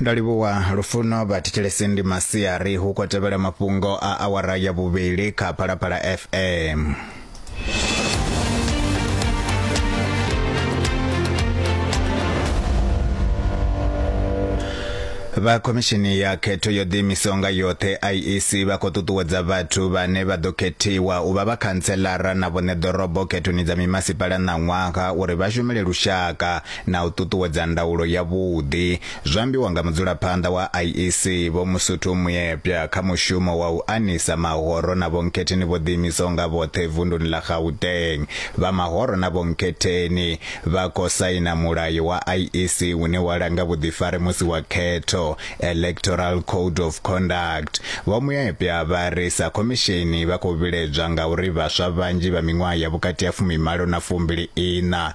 ndo livhuwa lufuno vhathetshelesi ndi masiari hu khou tevhela mafhungo a awara ya vhuvhili kha phalaphala fm vha khomishini ya khetho yo ḓiimisaho nga yoṱhe iec vha khou ṱuṱuwedza vhathu vhane vha ḓo khethiwa u vha vha khantselara na vhone ḓorobo khethoni dza mimasipala ṋaṅwaha uri vha shumele lushaka na u ṱuṱuwedza ndaulo yavhuḓi, zwo ambiwa nga mudzulaphanḓa wa IEC Vho Musuthu Muyepya kha mushumo wa u anisa mahoro na vhonkhetheni vho ḓiimisaho nga vhoṱhe vunduni ḽa Gauteng. Vha mahoro na vhonkhetheni vha khou saina mulayo wa IEC une wa langa vhuḓifari musi wa khetho, Electoral Code of Conduct. Vho Muyepya vha ri sa khomisheni vha khou vhiledzwa ngauri vhaswa vhanzhi vha miṅwaha ya vhukati ha fumimalo na fumbili iṋa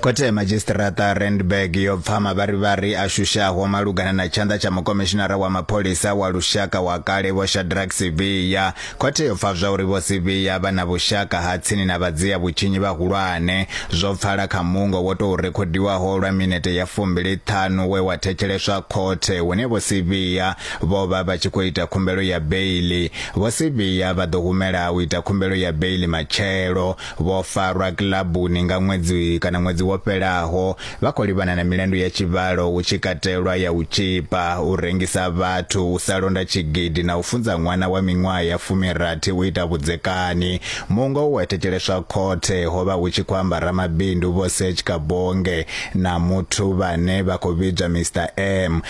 Khothe ya Madzhisiṱiraṱa Randburg yo pfa mavharivhari a shushaho malugana na tshanḓa tsha mukomishinara wa mapholisa wa lushaka wa kale Vho Shadrack Sibiya. Khothe yo pfa zwauri Vho Sibiya vha na vhushaka ha tsini na vhadzia vhutshinyi vhahulwane. Zwo pfala kha mungo wo tou rekhodiwaho lwa minete ya fumbili ṱhanu we wa thetsheleswa khothe hune Vho Sibiya vho vha vha tshi khou ita khumbelo ya beiḽi. Vho Sibiya vha ḓo humela u ita khumbelo ya beiḽi matshelo. Vho farwa kilabuni nga ṅwedzi kana ṅwedzi wo fhelaho vha khou livhana na milandu ya tshivhalo hu tshi katelwa ya u tshipa, u rengisa vhathu, u sa londa tshigidi na u funza ṅwana wa miṅwaha ya fumirathi u ita vhudzekani. Muungo u wa thetsheleswa khothe ho vha hu tshi khou amba ramabindu Vho Serge Kabonge na muthu vhane vha khou vhidzwa Mister M.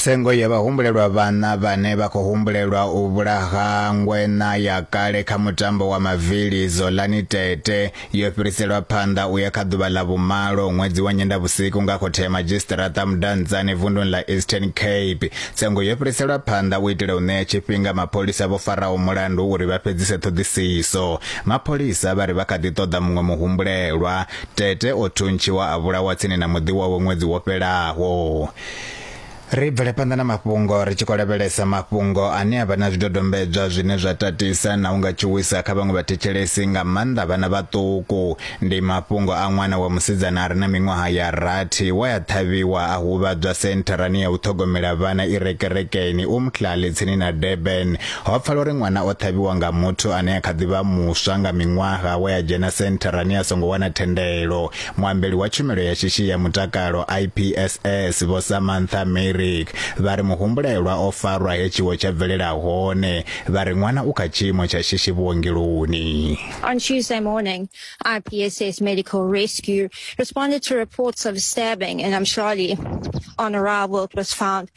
Tsengo ya vhahumbulelwa vhana vhane vha khou humbulelwa u vhulaha ngwena ya kale kha mutambo wa mavili Zolani Tete yo fhiriselwa phanḓa u ya kha ḓuvha ḽa vhumalo ṅwedzi wa Nyendavhusiku nga khothe ya madzhisiṱiraṱa Mudantsane vunduni ḽa Eastern Cape. Tsengo yo fhiriselwa phanḓa u itela u ṋea tshifhinga mapholisa vho faraho mulandu uri vha fhedzise ṱhoḓisiso. Mapholisa vha ri vha kha ḓi ṱoḓa muṅwe muhumbulelwa. Tete o thuntshiwa a vhulawa tsini na muḓi wawe ṅwedzi wo fhelaho. Ri bvele phanḓa na mafhungo ri tshi khou lavhelesa mafhungo ane a vha na zwidodombedzwa zwine zwa tatisa na u nga tshuwisa kha vhaṅwe vhathetshelesi nga maanḓa vhana vhaṱuku. Ndi mafhungo a ṅwana wa musidzana a re na miṅwaha ya rathi we a ṱhavhiwa a huvhadzwa sentharani ya u ṱhogomela vhana i re kerekeni Umhlali tsini na Durban Ho pfala uri ṅwana o ṱhavhiwa nga muthu ane a kha ḓi vha muswa nga miṅwaha we a dzhena sentharani a songo wana thendelo. Muambeli wa tshumelo ya shishi ya mutakalo IPSS Vho Samantha Merrick vha ri muhumbulelwa o farwa he tshiwo tsha bvelela hone, vha ri ṅwana u kha tshiimo tsha shishi vhuongeloni. On Tuesday morning, IPSS Medical Rescue responded to reports of a stabbing in Amshali. On arrival, it was found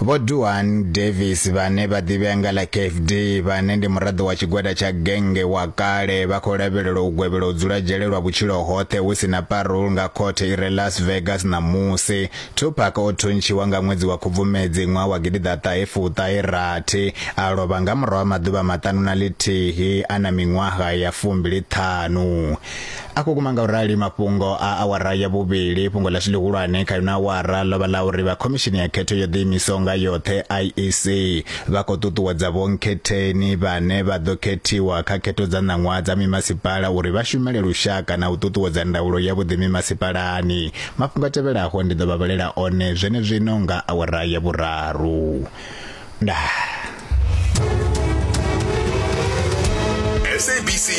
Vho Duan Davis vhane vha ḓivhea nga ḽa Kef D vhane ndi muraḓo wa tshigwada tsha genge wa kale vha khou lavhelelwa u gwevhela u dzula dzhele lwa vhutshilo hoṱhe hu si na parole nga khothe i re Las Vegas ṋamusi. Tupac o thuntshiwa nga ṅwedzi wa Khubvumedzi ṅwaha wa gidiḓaṱahe fuṱahe rathi a lovha nga murahu ha maḓuvha maṱanu na ḽithihi a na miṅwaha ya fumbili ṱhanu. a khou kuma nga u rali mafhungo a awara ya vhuvhili fhungo ḽashu ḽihulwane kha ino awara ḽo vha ḽa uri vha khomishini ya khetho yo ḓiimisaho nga yoṱhe iec vha khou ṱuṱuwedza vhonkhetheni vhane vha ḓo khethiwa kha khetho dza ṋaṅwaha dza mimasipala uri vha shumele lushaka na u ṱuṱuwedza ndaulo ya vhuḓi mimasipalani mafhungo a tevhelaho ndi ḓo vha vhalela one zwenezwino nga awara ya vhuraru ndaa